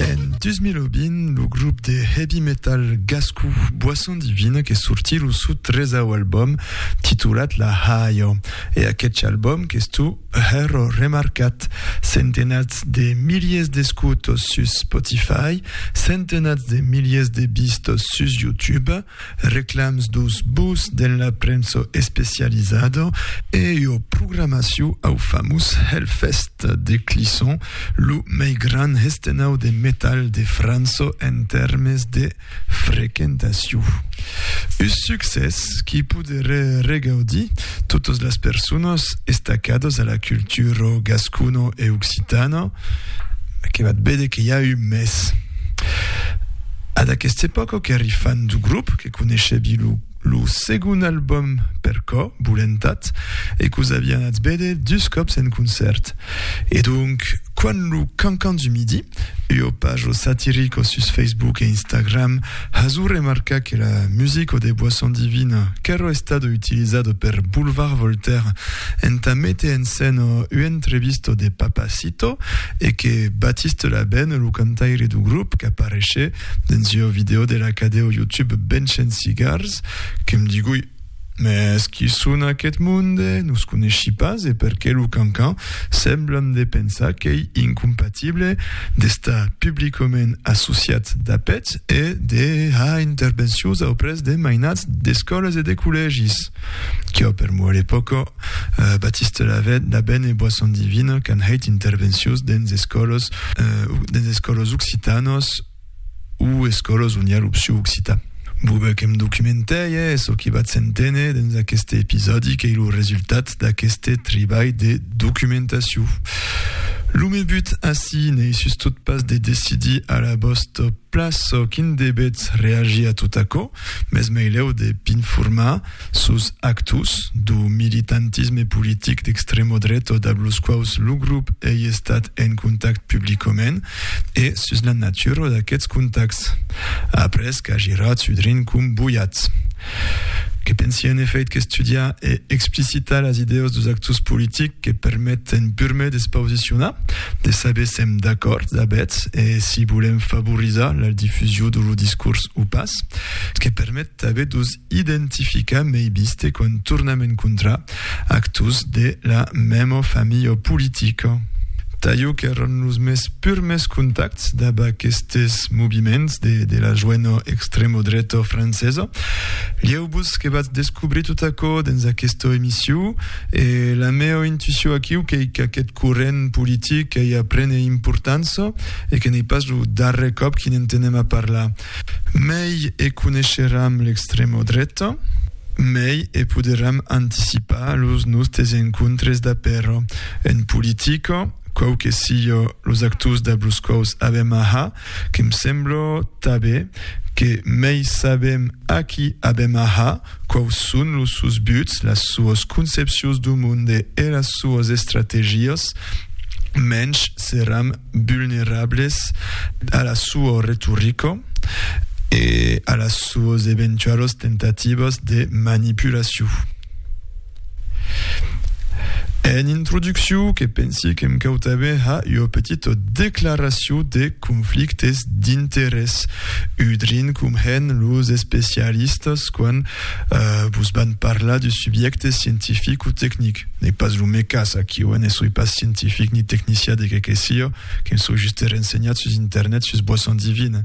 En 2020, lo grup de heavy metal gascon Boisson Divine que sorti lo sou tresau album titulat La Haio. E aquetx album qu'es tu hèro remarcat. Centenats de miliers d'escutos sus Spotify, centenats de miliers de vistos sus YouTube, Reclams dos bos de la premsa especializada e ua programacion au famós Hellfest de Clisson, lo mei gran hestenau de metal de França en tèrmes de frequentacion. Un succès qui poderé regaudir totas las personas estacadas a la cultura gascona e occitana, que vat vede que i a un mes. Ad aqueste epòca qu'èri fan du grop, que coneishebi lo segon albòm Per Cò Bolentat e qu'os avi anats véder dus còps en concèrt. E donc, quand lo Cancan du Midi, ua paja satirica sus Facebook e Instagram, hasó remarcar que la musica de Boisson Divine qu'èra estada utilizada per Boulevard Voltaire entà méter en scèna ua entrevista de Papa Citroën, Tito e que Baptiste Labène, lo cantaire du grop qu'apareishe dens ua vidèo de la cadèo YouTube Bench and Cigars, que m digui, Mès qui son aquest monde? No s coneshi pas e per qué lo cancan? Semblan de pensar qu'ei incompatible d'estar publicament associat d'a peth e de har intervencions auprès de mainats d'escòlas e de collègis. Quò per moi l'epòca Baptiste Lavène, Labène e Boisson Divine qu'an hèit intervencions dens escòlos, dens escòlos occitanos o escòlos on i a l'opcion occitan. Bobe que me documentèi e çò que vatz enténer dens aqueste episòdi qu'ei lo resultat d'aqueste tribalh de documentacion. Lo me but ací n'ei sustot pas de decidir a la vòsta plaç çò quin debètz reagir a tot aquò, Mès meilèu de p'informar sus actus do militantisme politic d'extremo dreto dab los quaus lo grop ei estat en contact publicament e sus la natura d'aqueths contacts, après qu'a girat su drin com boiat. Que pensi en efèit qu'estudiar e explicitar las idèos dos actus politics, que permet en purme d'espausiciona, de saber s'èm d'acòrd a bèth e si volèm favorizar la difusion de lo discors o pas, que permet tanben d'os identificar mei biste quan tornam encontrar actors de la mèma familha politica. Taieu qu'èran los mes purmes contactes dab aquestes moviments de la joena extremodreta francesa. Lieu-vos que vatz descobrir tot aquò dens aquesta emission. E la mèu intuició aquiu qu'ei qu'aqueth corrent politic ei a prene importança e que n'ei pas lo darrèr còp qu'i n'entenem a parlar. Mei e coneisheram l'extrèma dreta, mei e poderam anticipar los nòstes encontres d'apèro. En politica, quauque siá los actors dab los quaus avèm a har, Que'm sembla tanben que mei sabem a qui avem aha, quaus son los sòus buts, las soas concepcions dau monde e las soas estrategias, mensh seram vulnerables a la soa retorica e a las soas eventualas tentativas de manipulacion. En introducciu que pensi qu'em cautave ha ua petita declaraciu de conflictes d'interès, udrin com hèn los especialistas quan vos van parlar de subjècte scientific o tecnic. N'es pas lo mé cas, aquí oe ne soi pas scientific ni tecnicià de qué que sia, que'm soi juste rensenhat sus internet sus boisson divine.